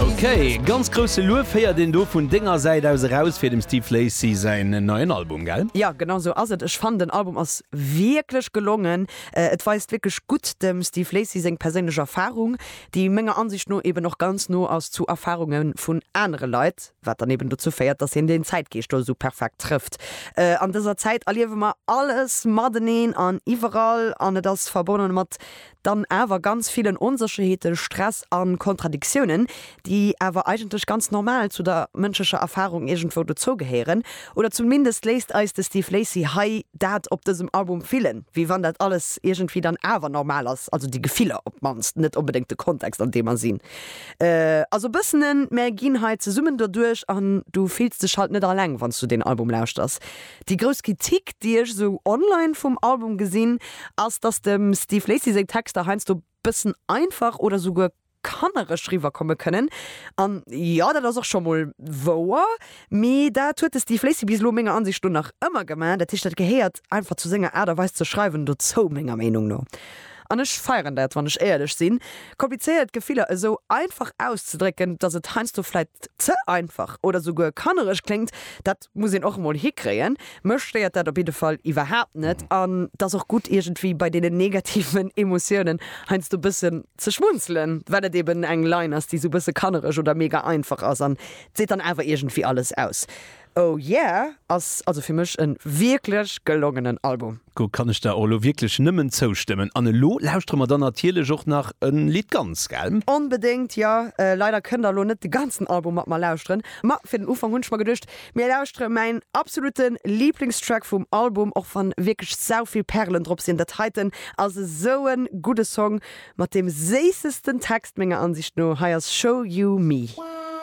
Ok, ganz grousse Luef héiert een do vun denger Säit aus eraus fir dem Steve Lacy säin neien Album, gell? Jo, genau sou ass et. Ech fannen den Album ass wierklech gelongen. Et weist wierklech gutt dem Steve Lacy seng perséinlech Erfarung, déi menger Ansicht no eben och ganz no ass zu Erfarunge vun anere Leit, wat dann eben dozou féiert, dass hien den Zäitgeescht do esou perfekt trëfft. An dëser Zäit erliewe mer alles mateneen an iwwerall an et ass verbonnen mat dann awer ganz villen Onsécherheeten, Stress a Kontradiktiounen, déi awer eigentlech ganz normal zu der mënschlecher Erfarung iergendwou dozou gehéieren. Oder zumindest léisst eis de Steve Lacy hei dat op dësem Album fillen, wéi wann dat alles iergendwéi dann awer normal ass, also déi Gefiller op d'mannst, net onbedéngt de Kontext an deem mer sinn. Also e bëssen en, Mär ginn hei zesummen doduerch an du fills dech halt net alleng, wann s du deen Album lauschters. Déi grouss Kritik, déi ech esou online vum Album gesinn, ass, dass dem Steve Lacy seng Texter heiansdo bëssen einfach oder souguer kannereg riwwerkomme kënnen. An jo, dat ass och scho mol wouer, mee dat huet de Steve Lacy bis elo menger Ansicht no nach ëmmer gemaach. Dat heescht, dat gehéiert einfach zu senger Aart a Weis ze schreiwen dozou, menger Meenung no. An ech feieren dat, wann ech éierlech sinn, komplizéiert Gefiller esou einfach auszedrécken. Dass et heiansdo vläit ze einfach oder souguer kannereg kléngt, dat Muss een och emol hikréien. Mech stéiert dat op jidde Fall iwwerhaapt net an et ass och gutt iergendwéi bei deenen negativen Emotiounen heiansdo e bëssen ze schmunzelen, well et eben eng Line ass, déi esou e bësse kannereg oder mega einfach ass an et seet dann awer iergendwéi alles aus. Oh yeah ass also fir mech e wierklech gelongenen Album. Do kann ech der och elo wierklech nëmmen zoustëmmen an elo lauschtere mer dann natierlech och nach e Lidd ganz, gell? Onbedéngt, jo. Leider kënnt der elo net de ganzen Album mat mer lauschteren, Ma fir den Ufank hunn ech mer geduecht, mir lauschtere mäin absolute Liblingstrack vum Album, och wann wierklech sau vill Perlen drop sinn. Dat heiten ass esou e gudde Song mat deem séissesten Text menger Ansicht no. Hei ass Show You Me.